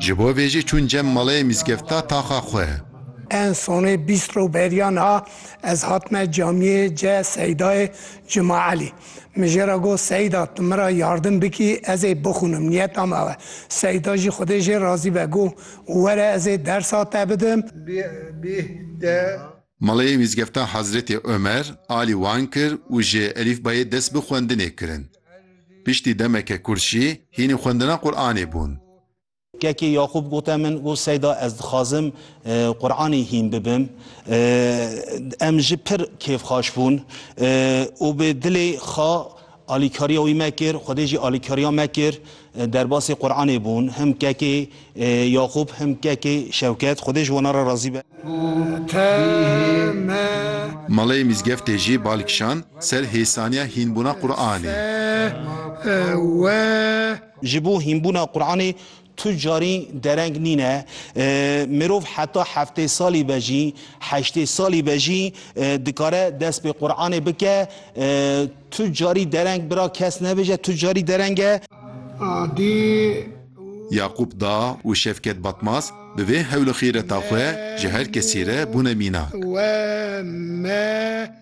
Ji bo vê jî çûn cem malê mîzgefta taxa xwe. En sonê bîst roj beriya niha ez hatime camiyê ce Seydayê Cuma Elî. Min jê re got Seyda tu min re yardim bikî ez ê bixwînim niyeta me ew e. Seyda jî xwedê jê razî be got were ez ê dersa te bidim. Bih bih de. Malê Mîzgefta Hezretê Omer alî wan kir û ji elîfbayê dest bi xwendinê kirin. Piştî demeke kurt jî hînî xwendina Quranê bûn. Kekê Yaqûb gote min, Got Seyda ez dixwazim Quranê hîn bibim. Em ji pir kêfxaş bûn û bi dilê xwe Alîkariya wî me kir, Xwedê jî alîkariya me kir. Derbasê Quranê bûn. Him kekê Yaqûb, him kekê Şewket. Xwedê ji wana re razî be. Malê Mîzgeftê jî bal kişand ser hêsaniya hînbûna Quranê. Ji bo hînbûna Quranê Tu carî dereng nîne. Mirov heta heftê salî be jî, heştê salî be jî dikare dest pê Quranê bike. Tu carî dereng bira kes nebêje, tu carî dereng e. Adî. Yaqûp Da û Şevket Batmaz bi vê hewl û xîreta xwe ji her kesî re bûne mînak. We me.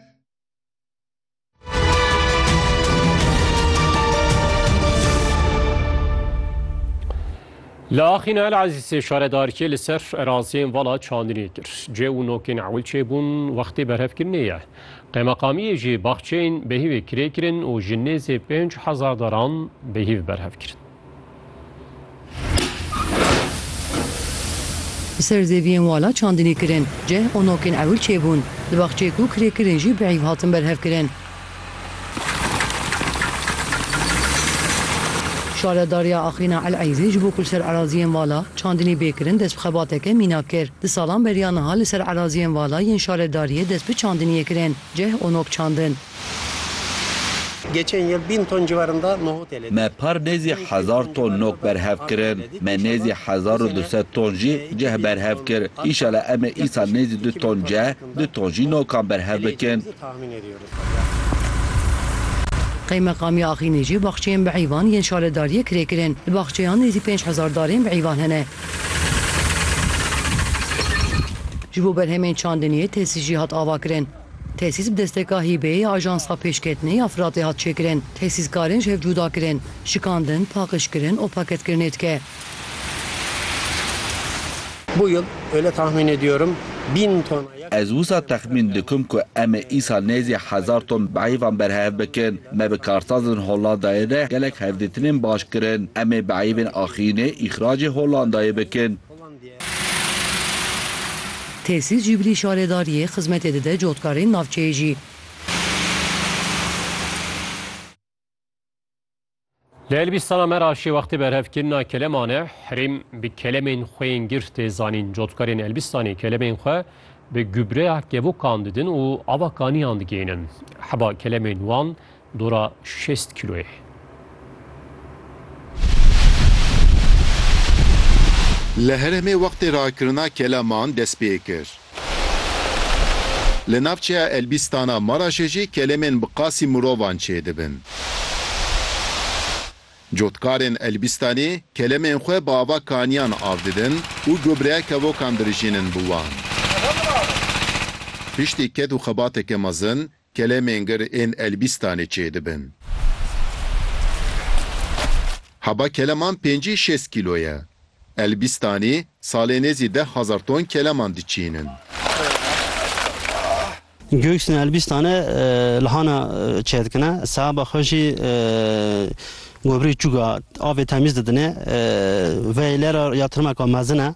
Li Axîn El Ezîzê şaredarkê li ser eraziyên vala çandinê kir. Cê û nokên ewil çêbûn wextê berhevkirinê ye. Qemeqamiyê jî baxçeyên behîvê kirê kirin û ji nêzê pênc hezar daran behîv berhev kirin. Bi ser zêviyên wala çandinî kirin. Ceh û nokên ewil çêbûn. Di baxçeyê ku kirê kirin jî bi îv hatin berhevkirin. Şaredariya Axîna El Eyzê ji bo ku li ser eraziyên vala çandinî bê kirin dest bi xebateke mînak kir. Di salan beriya niha li ser eraziyên vala yên şaredariyê dest bi çandiniyê kirin. Ceh û nok çandin. Geçên yil bîn ton ciwarında nohotê lê Me par nêzî hezar ton nok berhev kirin. Me nêzî hezar û du sed ton jî cih berhev kir. Îşala em ê îsal nêzî du ton cih, du ton jî nokan berhev bikin. Qeymeqamê Axînê jî baxçeyên bi heyvan yên şaredariyê kirê kirin. Di baxçeyan nêzî pênc hezar darên bi heyvan hene. Ji bo berhemên çandiniyê tesî jî hat avakirin. Tesîs bi desteka hîbeyê ya Ajansa Pêşketinê ya Firatê hat çêkirin. Tesîskarên ji hev cuda kirin, şikandin, paqijkirin û paketkirinê dike. Bu yıl öyle tahmin ediyorum bin ton. Ez wisa texmîn dikim ku em ê îsal nêzî hezar ton bihêvan berhev bikin. Me bi karsazên Hollandayê re gelek hevdîtinên baş kirin. Em ê bihêvên axînê îxracê Hollandayê bikin. Tesîs jî bilî şaredariyê xizmetê dide cotkarên navçeyê jî. Li Elbîstana me re şêwextê berhevkirina keleman e. Herêm bi kelemên xwe yên girt tê zanîn. Cotkarên Elbîstanê kelemên xwe bi gubreya kevokan didin û ava kaniyan digihînin. Heba kelemên wan Dora şêst kîloyê. Li Herêmê wextê rakirina keleman dest pê kir. Li navçeya Elbîstana Maraşê jî kelemên bi qasî mirovan çêdibin. Cotkarên Elbîstanê kelemên xwe bi ava kaniyan av didin û gobreya kevokan dirijînin bi wan. Piştî ked û xebateke mezin, Kelemên gir ên Elbîstanê çêdibin. Heba keleman pêncî şêst kîlo ye. Elbîstanê salê nêzî deh hezar ton keleman diçînin. Göksne Elbîstanê li hana çêdikine. Sehaba xwe jî gobrî çûk a avê temîz didinê. Veyê lê re ya tirmeka mezin e.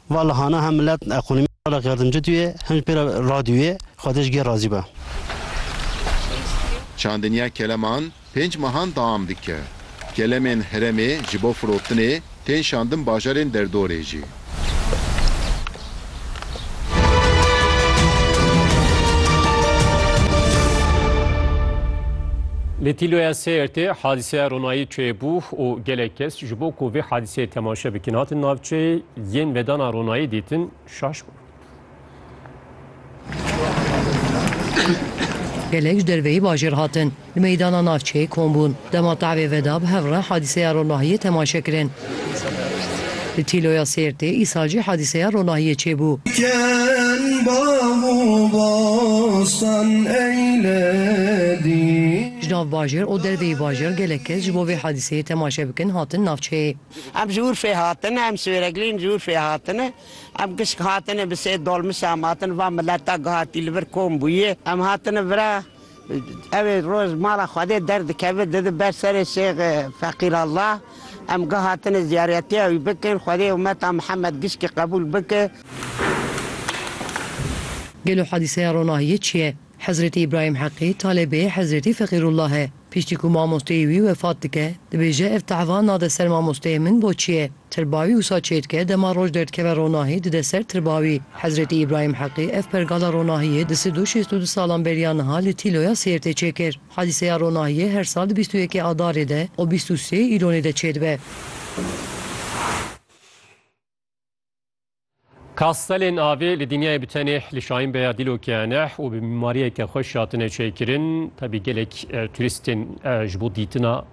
Va lihana hem milet ekonomî çalak ya din cidûyê hem jî pê re radûyê. Xwedê ji gê razî be. Çandiniya keleman pênc mehan deam dike. Kelemên herêmê ji bo firotinê tên şandin bajarên derdorê jî. Li Tîloya Sêrtê hadîseya ronayî çêbû û gelek kes ji bo ku vê hadîseyê temaşe bikin hatin navçeyê. Yên vedana ronayî dîtin şaş bûn. Gelek ji derveyî bajêr hatin. Li meydana navçeyê kom bûn. Dema tevê veda bi hev re hadîseya ronahiyê temaşe kirin. Li Tîloya Sêrtê îsal jî hadîseya ronahiyê çêbû. Ji nav bajêr û derveyî bajêr gelek kes ji bo vê hadîseyê temaşe bikin hatin navçeyê. Em ji Urfê hatine, em Swêreglîn ji Urfê hatine. Em kişk hatine bi sê dolmuşe em hatine va mileta ku hatî li vir kom bûye. Em hatine vira ew ê roj mala Xwedê derdikeve dide ber serê Şêx Feqîr Allah. Em gi hatine ziyaretiya wî bikin. Xwedê umeta Mihemed gişkî qebûl bike. Gelo hadîseya ronahiyê çi ye? Hezretî Îbrahîm Heqî talebê Hezretî Feqîrullah e. Piştî ku mamosteyê wî wefat dike, dibêje ev tehva nade ser mamosteyê min bo çi ye. Tirba wî wisa çêdike dema roj derdikeve ronahî dide ser tirba wî. Hezretî Îbrahîm Heqî ev pergala ronahiyê di sed û şêst û du salan beriya niha li Tîloya Sêrtê çêkir. Hadîseya ronahiyê her sal di bîst û yekê Adarê de û bîst û sê Îlonê de çêdibe. Kastelên avê li dinyayê bi tenê li Şahin Beya Dîlokê ne û bi mîmariyeke xweş hatine çêkirin. Tevî gelek turîstên ji bo dîtina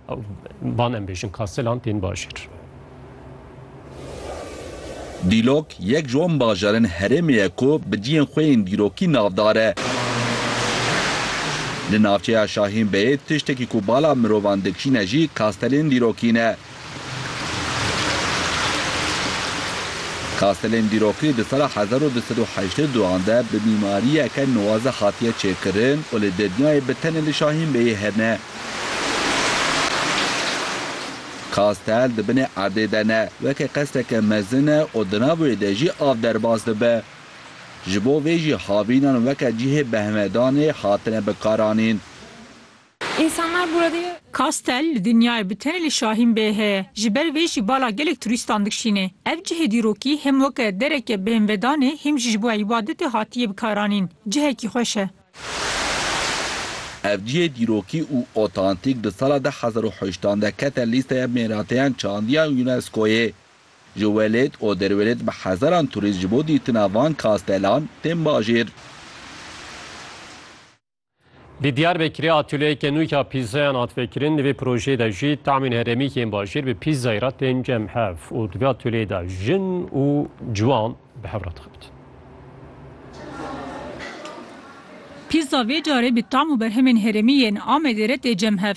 van em bêjin kastelan tên bajêr. Dîlok yek ji wan bajarên herêmê ye ku bi cihên xwe yên dîrokî navdar e. Li navçeya Şahin Beyê tiştekî ku bala mirovan dikişîne jî kastelên dîrokî ne. Kastelên dîrokî di sala hezar û du sed û heştê û duan de bi mîmariyeke nuwaze hatiye çêkirin û li dinyayê bi tenê li Şahîn Beyê hene. Kastel di binê erdê de ne, weke qesreke mezin e û di nav wê de jî av derbas dibe. Ji bo vê jî havînan weke cihê behmedanê hatine bikaranîn. Însanlar burada ye. Kastel li dinyayê bi tenê li Şahîn Bey heye. Ji ber vê jî bala gelek turîstan dikşînê. Ev cihê dîrokî him weke dereke bêhnvedan ê him jî ji bo îbadetê hatiye bikaranîn. Cihekî xweş e. Ev cihê dîrokî û otantîk di sala du hezar û heştan de kete lîsteya mêrateyan çandiyan UNESCO'yê. Ji welêt û derwelêt bi hezaran turîst ji bo dîtina van kastelan tên bajêr. Di Diyarbekirê atûlyeyeke nû ya pîzzayan hat vekirin, di vê projeyê de jî tamîn herêmî yên bajêr bi pîzzayê re tên cem hev û di vê atûlyeyê de jin û ciwan bi hev re dixebitin. Pîzza vê carê bi tam û berhemên herêmî yên Amedê re tê cem hev.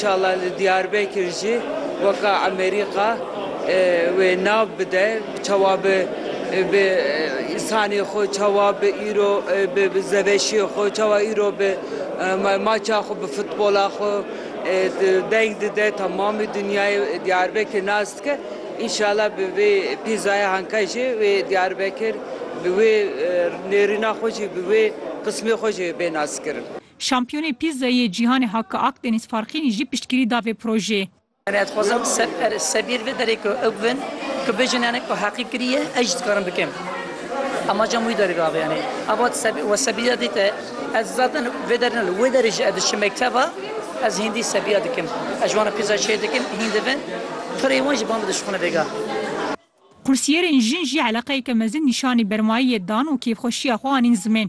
Şala li Diyarbekir jî weka Emerîka wê nav bide çawa bi bi însanê xwe çawa bi îro bi bi zeveşiyê xwe çawa îro bi ma- maça xwe bi futbola xwe e, di- deng dide temamê dinyayê Diyarbekir nas dike. Înşala bi vê pîzaya hanka jî wê Diyarbekir bi wê e, nêrîna xwe jî bi wê qismê xwe jî bê naskirin. Şampiyonê Pîzzayê yê Cîhanê Hakkı Akdeniz Farqînî jî piştgirî da vê projeyê. Em dixwazin sebîr vê derê ku ew bin ku bêjin yanê ku heqî kiriye ez jî dikarim bikim. Amaca min wî derê da vê yanê. Ava we sebîra dîte. Ez zaten vê derê ne li wê derê jî ez diçim mekteba ez hîndî sebîra dikim. Ez ji wan re pîzza çêr dikim hîn dibin. Pirê wan jî ba min dişuxine bêga. Kursiyerên jin jî eleqeyeke mezin nîşanî bermayî yê dan û kêfxweşiya xwe anîn zimên.